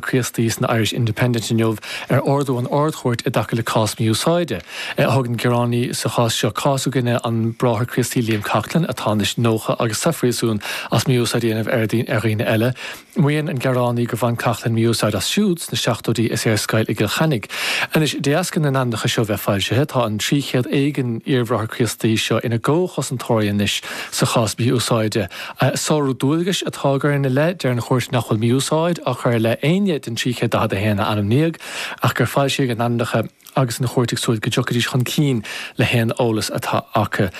Críostaí san Irish Independent inniu ar ordú an Ard-Chúirt i dtaca le cás mí-úsáide. Thug an gearánaí sa chás seo cás i gcoinne an Bráthair Críostaí Liam Coughlan, atá anois 90 agus sa phríosún, as mí-úsáid a dhéanamh ar ar dhaoine eile. Maíonn an gearánaí gur bhain Coughlan mí-úsáid as siúd sna seachtóidí is é ar scoil i gCill Chainnigh. Anois, de dheasca na n-ainmneacha seo bheith foilsithe, tá an 300 éigin iar-Bhráthair Críostaí seo ina gcomhchosantóirí anois sa chás mhí-úsáide, Sárú dualgais atá á chur ina leith, deir an chúirt nach bhfuil mí-úsáid á chur i leith éinne den 341 a ainmníodh ach gur foilsíodh a n-ainmneacha agus an chúirt ag súil go dtiocfaidís chun cinn le haon eolas atá acu.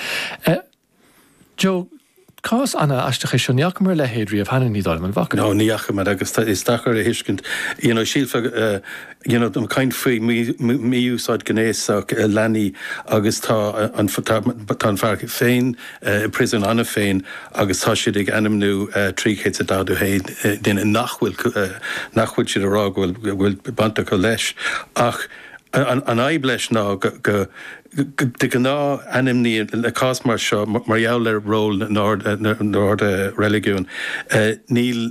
Joe, cás an-aisteach é seo, ní fhaca mé a leithéid riamh cheana, ní dóigh liom, an bhfaca? No, ní fhaca mé agus is deacair a thuiscint, you know, shílfeá, you know, an chaint faoi mhí-úsáid ghnéasach leanaí agus tá an, tá an fear féin i bpriosun cheana féin agus tá siad ag ainmniú 341 duine nach bhfuil, nach bhfuil siad ag rá go bhfuil, go bhfuil baint acu leis ach an fhadhb leis ná go, de ghnáth ainmníonn, le cás mar seo, mar gheall ar ról na n-ord reiligiúin, níl,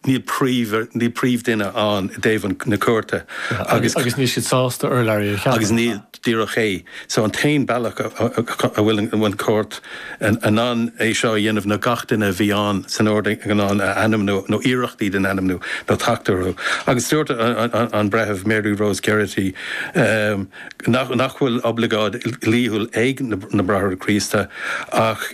níl príomhdhuine ann i dtaobh na cúirte agus. Agus níl siad sásta urlabhraí a cheapadh. Agus níl, díreach é. So an t-aon bealach a bhfuil an chúirt in ann é seo a dhéanamh ná gach duine a bhí ann san ord iomlán a ainmniú, nó iarrachtaí iad a ainmniú, nó teacht orthu. Agus dúirt an Breitheamh Mary Rose Gearty nach bhfuil oibleagáid dhlíthiúil ag na Bráithre Críostaí ach,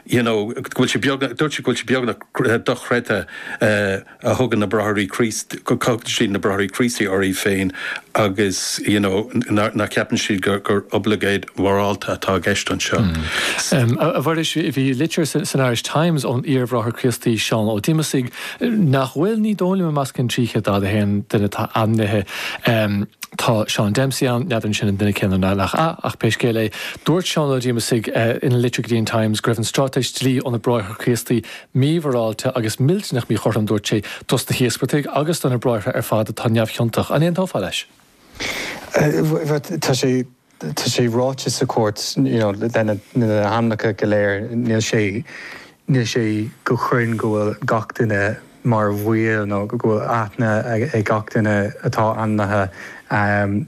you know, go bhfuil sé beagnach, dúirt sí go bhfuil sé beagnach, dochreidte go dtugann na Bráithre Críostaí, go dtugann siad, na Bráithre Críostaí, orthu féin agus you know nach gceapann siad gur oibleagáid mhorálta atá i gceist anseo. A Mhuiris, bhí litir san Irish Times ón iar-Bhráthair Críostaí Seán Ó Diomasaigh, nach bhfuil, ní dóigh liom, i measc an 341 duine atá ainmnithe. Tá Seán Dempsey ann, n'fheadar sin an duine céanna ná nach ea ach pé scéal é, dúirt Seán Ó Diomasaigh ina litir go dtí an Times go raibh an stráitéis dlí ó na Bráithre Críostaí mímhorálta agus millteanach míchothrom, dúirt sé, dos na híospartaigh agus do na bráithre ar fad atá neamhchiontach. An aontófá leis? Tá sé, tá sé ráite sa chúirt, you know, lena, na hainmneacha go léir, níl sé, níl sé go cruinn go bhfuil gach duine, mar bhall nó go bhfuil aithne ag gach duine atá ainmnithe,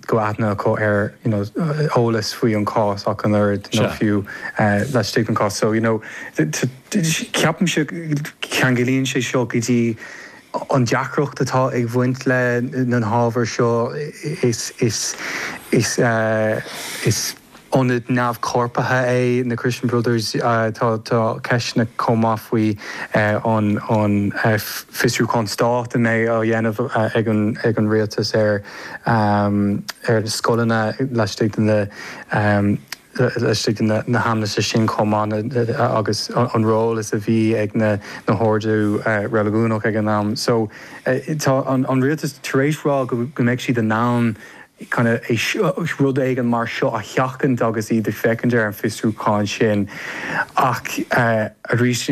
go bhfuil aithne acu ar, you know, eolas faoi an chás ach an oiread nó fiú laistigh den chás. So, you know, ceapaimse ceanglaíonn sé seo go dtí an deacracht atá ag bhaint le na hábhair seo is, is, is, is. ionad neamhchorpraithe é na Christian Brothers. Tá ceisteanna chomh maith faoin bhfiosrúchán stáit a bheidh á dhéanamh ag an rialtas ar na scoileanna laistigh de na haimsire sin chomh maith agus an ról is a bhí ag na hoird reiligiúnacha ag an am. So tá an rialtas tar éis rá go mbeidh siad in ann rud éigin mar seo a sheachaint agus iad ag féachaint ar an bhfiosrúchán sin. Ach arís,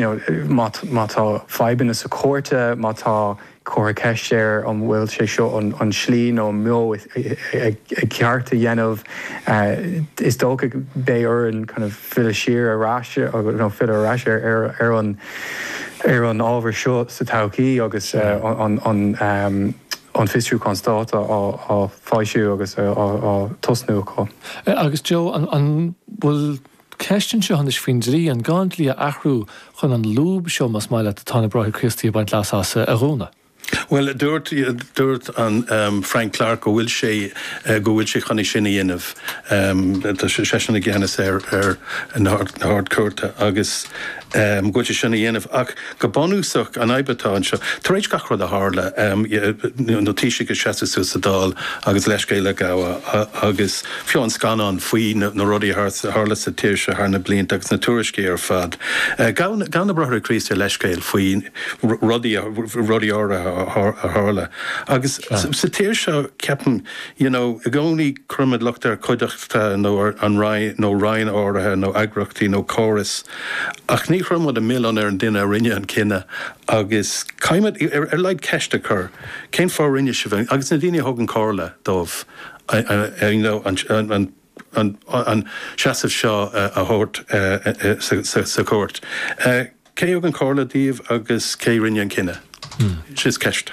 má tá fadhbanna sa chúirt, má tá curtha ceist ar an bhfuil sé seo an tslí nó an meon ceart a dhéanamh, is dócha beidh orainn filleadh siar ar ais, nó filleadh ar ais ar an ábhar seo sa todhchaí agus an. an Fiosrúchán Stáit á foilsiú agus á tosnú acu. Agus Joe, an bhfuil ceist anseo anois faoin dlí, an gá an dlí a athrú chun an lúb seo, más maith leat, atá na Bráithre Críostaí ag baint leasa as, a dhúnadh? Bhuel, dúirt, dúirt an Frank Clarke go bhfuil sé, go bhfuil sé chun é sin a dhéanamh. Tá seisean i gceannas ar na hArd-Chúirteanna agus. go bhfuil sé chun é sin a dhéanamh. Ach go bunúsach, an fhadhb atá anseo, tar éis gach rud a tharla, na Taoisigh ag seasamh suas sa Dáil agus leithscéal á ghabháil agus fiú an scannán faoi na rudaí a tharla sa tír seo thar na blianta agus na tuairiscí ar fad, ghabh na Bráithre Críostaí leithscéal faoi rudaí áirithe a tharla. Agus sa tír seo, ceapaim, you know, i gcónaí cuirimid locht ar chuideachta nó ar an roinn nó roinn áirithe nó eagraíochtaí nó córas. Ach ní chuireann muid an milleán ar an duine a rinne an cinneadh agus caithfimid ar a laghad ceist a chur, cén fáth a rinne sibh, agus na daoine a thugann comhairle dóibh, an seasamh seo a thabhairt sa chúirt? Cé a thugann comhairle daoibh agus cé a rinne an cinneadh? Sin í an cheist.